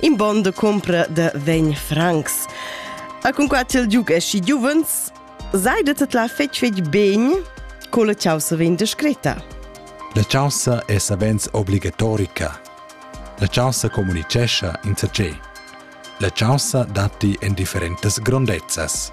in bon de compra de vegn francs. A cunquai il Duke e si giuvens, seidet et la fetg fetg ben con la causa vegn descritta. La causa è savens obligatorica. La causa comunicescha in sa ce. La causa datti en differentas grondezzas.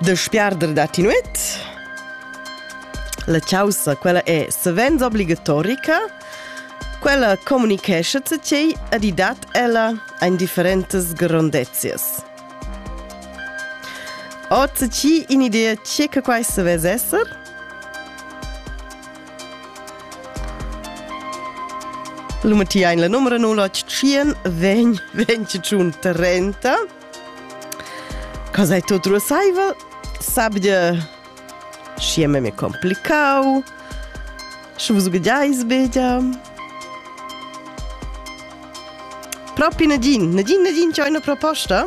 De spiarder da tinuet? La caussa, quella è savens obligatorica, quella comunicescha tgei a di dat ella ein differentas grondezias. O tgi in idea ce che quai se vez esser? Luma ti ein la numero 081 vegn vegn tschun 30 Cosa è tutto rosaivel? Sabia și me me complicau. Și vos gudais bedia. Propi Nadine, Nadine, Nadine, c'è una proposta?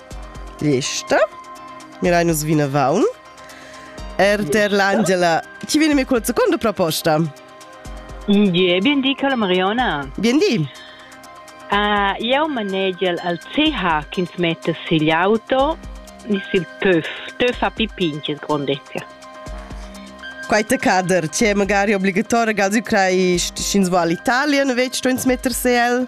Lista. Mirai nus vinavon. Er der l'Angela. Chi viene mi col secondo proposta? Gie, bien di, Carla Mariona. Bien di. Uh, eu manegel al CH ch'ins metta sigl auto ni sil töf. Töf a pipinches grondezia. Quai te cader, c'è magari obbligatorio gas ucrai sch'ins va all'Italia, no vec sto ins metter se el?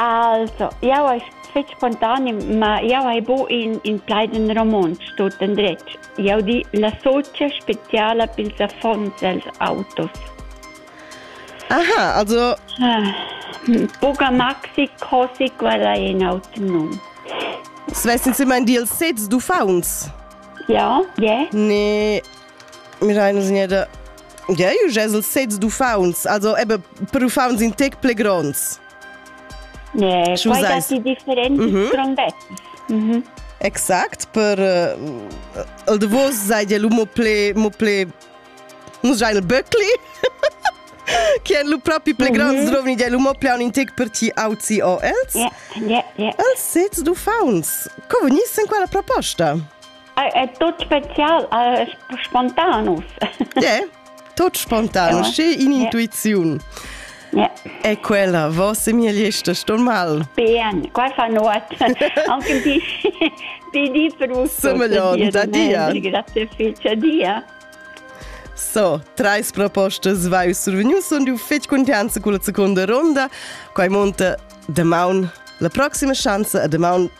Also, jau hai fetg spontanim, ma jau hai buc in, in plaid en romontsch, tot endretg. Jau di la socia speciala pils affons els autos. Aha, also... Ah, buca maxi così qual è in autro num. Svest insomma in dils sets d'uffants? Ja, ja. Ne, Miraina signeda. Ja, ju gesel sez d'uffaunts, also eben per uffaunts in tec ple gronds. Ne, Schu quai seis? datti differents Mhm. grondettes. Mhm. Exact, per uh, el davos seid el mo ple, mo ple, nu sein el böcli, che el lu propi ple gronds Mhm. rovni, el mo ple in tec per ti auzi o els. Ja, ja, ja. Els sez d'uffaunts. Co vegnissen qua la proposta? è tut spezial, spontan uss. Yeah, tut spontan, ja. sche in'intuiziun. Yeah. È quella vossa migliesta stormal? Bien, qua fa nuot. Anche di, di, di per uso. Somiglion, da dia. Grazie fece, dia. So, treis propostas vai survenius und du fetg contenza con la seconda ronda. Quai monta de maun la proxima chance a de maun